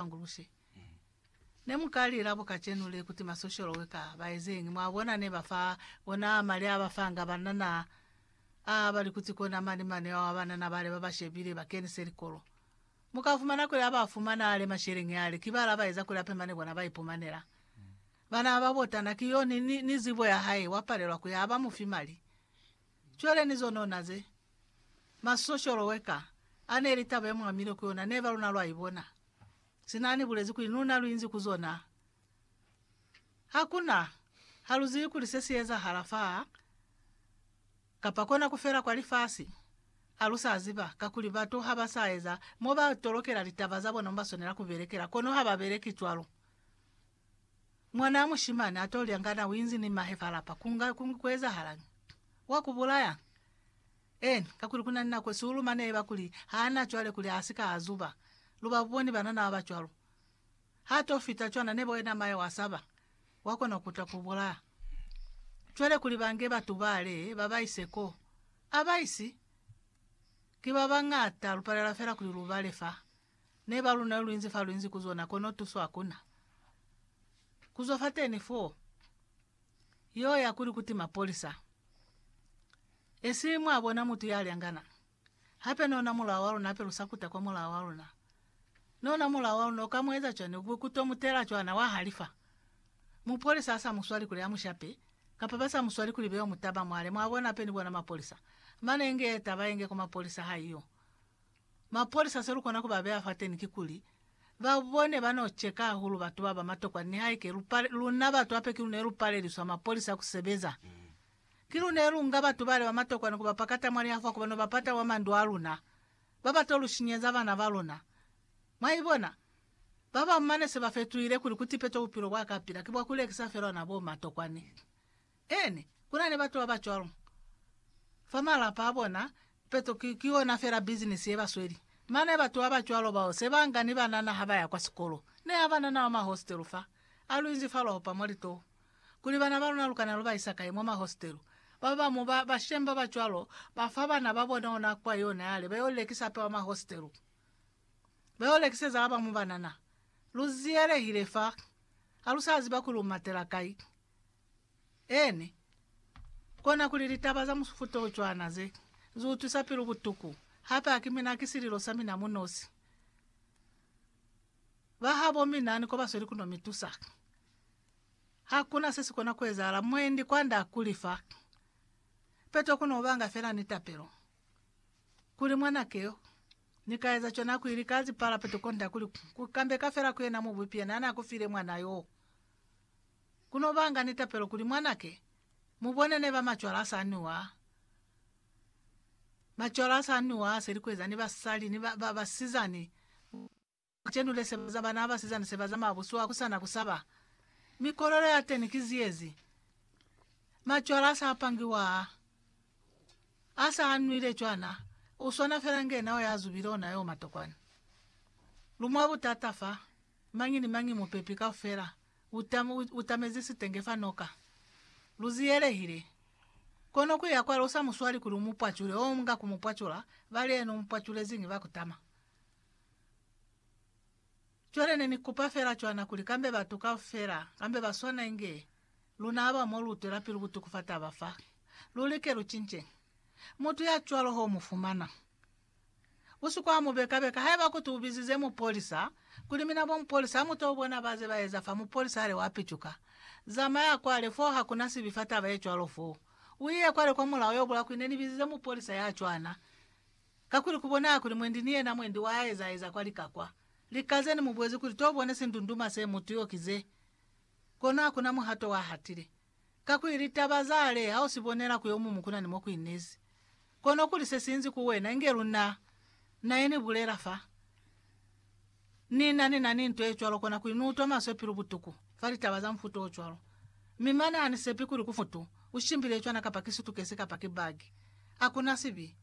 Anguluse. Ne mu ka lila bo kacenu le kuti masosholo we ka ba ezeñi? Mwa bona, ne ba fa ona mali a ba fanga banana a ba li kuti kona mani mane ao a banana bale ba ba shebile ba kenise likolo. Mu ka fumana kuli a ba fumana ale masheleñi ale, ki bala ba eza kuli ape mane kona ba ipumanela. Bana ba botana ki yo ni, ni, ni zibo ya hae, wa palelwa ku ya, ha ba mu fi mali. Cwale ni zonona ze. Masosholo weka ane ili taba yemuamile ku yona neba luna lwa ibona. Sina ani bulezi kuli nuna luinzi ku zona, hakuna ha luzibi kuli se si ezahala fa kapa kona ku fela kwa lifasi. Ha lu sa ziba, kakuli batu ha ba sa eza mo ba tolokela litaba za bona mo ba swanela ku belekela, kono ha ba beleki cwalo. Mwanaa mushimani ato lya ngana uinzi ni mahe fa lapa, kunga kungi kuezahalañi? Wa kubulaya? Eeni, kakuli kuna ni nako siulu mane eba kuli haana cwale kuli asika azuba. Lu ba buboni banana baba cwalo. Ha to fita cwana nebo yena mahe wa saba, wa kona kutwa kubulaya. Cwale kuli bange batu bale babaise ko, abaisi? Ki babañata, lupalela fela kuli lubale fa. Ne ba luna luinzi fa luinzi ku zona, kono tuso hakuna. Ku zwa fateni foo, yo ya kuli kuti mapolisa. Esi mwa bona mutu ya lyangana. Hape ne ona mulao wa luna hape lu sa kuta kwa mulao wa luna. Ne ona mulao wa luna, uka mu eza cwani? Ukube ku to mu tela cwana, wa halifa. Mupolisa ha sa mu swali kuli a mu shape, kapa ba sa mu swali kuli be yo mu taba mwale, mwa bona, hape ni bona mapolisa. Mane inge ye taba ye nge kwa mapolisa ha iyo. Mapolisa selukona kubabeya fateni kikuli, babone bano cheka hahulu batu baba matokwa nihaike lupa luna batu hape kilune lupaleliswa mapolisa kusebeza. Kilune lunga batu bale bamatokwa ni kubapakata mwa lihafwa kubano bapata mwa mandu aluna, babato lushinyeza bana baluna. Mwaibona? Babamu mane sebafetuhile kuli kutipeto bupilo bwakapila kibwakulekisa fela ona bo matokwani. Ene, ku na ni batu ba ba cwalo fa malapa a bona, ipeto ki, ki yona fela bizinisi ye ba sweli. Mane batu ba ba cwalo bao se ba nga ni banana ha ba ya kwa sikolo. Ne ha banana ba mwa hostelu fa, a lu inzi fa lwa opa mwa litoho, kuli bana ba luna lu kana lu ba isa kai mwa mahostelu. Ba bamu ba bashemi ba ba cwalo ba fa bana ba bona ona kwa yona yale ba yo lekisa hape kwa mahostelu, ba yo lekiseza ba bamu banana. Lu ziyelehile fa, ha lu sa ziba kuli lu matela kai. Eni, kona kuli litaba za mufuta o cwana ze, zi utwisa pilu butuku. Hape ha ki mina, ki sililo sa mina mu nosi. Ba habo mina ni ko ba sweli ku no mi tusa. Ha ku na se si kona ku ezahala. Mwendi kwand'a ha kuli fa. Peto ku no banga fela ni tapelo. Kuli, Mwanake yo, Ni ka eza cwana ku ili ka zipala peto kond'a kuli ku kambeka fela ku yena Mubupi yena n'a ku file mwana yo. Ku no banga ni tapelo kuli mwanake, mu bone neba macwala a sa nwiwa, macwala a sa nwiwa a selikweza ni basali ni ba, ba, basizani, ba cenule seba za bana ba basizani seba za mabusu a ku sana ku saba. Mikolelo ya teni ki ziyezi. Macwala a sa pangiwa a, a sa a nwile cwana, u swana fela nge nao ya zubile ona yo matokwani. Lu mwa butata fa, mañi ni mañi, mupepi kaufela. utamezi sitenge fa noka. Luziyelehile. Kono kuya kwale usa muswali kuli umupwacule o mga kumupwacula, bali yena umupwaculeziñi ba kutama. Cwale ne ni kupa fela cwana kuli kambe batu kaufela, kambe ba swana inge luna aba mo lu twela pilu butuku fa taba fa, lu like lu cince. Mutu ya cwalo ho mu fumana. Usika mu beka beka haiba kuti ubizize mupolisa, kuli mina bo mupolisa hamuto bona baze baeza fa mupolisa hali wa picuka. Zamaya kwale foo hakuna sibi fa taba ye cwalo foo. Uiye kwale kwa mulao yo bula kuli ne nibizize mupolisa ya cwana. Kakuli kubonaha kuli mwendi ni yena mwendi wa eza eza kwa lika kwa. Lika ze ni mubuezi kuli to bone sindunduma se mutu yo ki ze. Kono hakuna muhato wa hatile. Kakuli litaba za hale ha u si bonela ku yomumu ku na ni mo ku inezi, kono kuli se sinzi ku wena inge luna. Na ye ni bulela fa, Ni na ni na ni nto ye cwalo, kona kuli ni utwa maswe pilu butuku fa litaba za mufuta o cwalo. Mi mane ha ni sepi kuli ku futu u shimbile cwana kapa ki sutukesi kapa ki bagi. Hakuna sibi.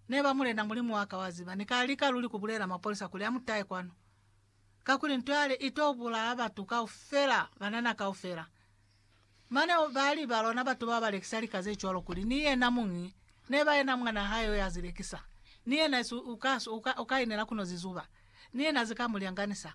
Neba, Mulena Mulimu wa ka, wa ziba, ni ka lika luli ku bulela mapolisa kuli a mu tahe kwanu. kakuli nto yale ito bulaya batu kaufela, banana kaufela. Mane bali balona batu babalekisa lika zecwalo kuli ni yena muñi neba yena mwana hae yo yazilekisa, ni yena uka, uka, uka inela kuno zizuba, ni yena zika mulyanganisa.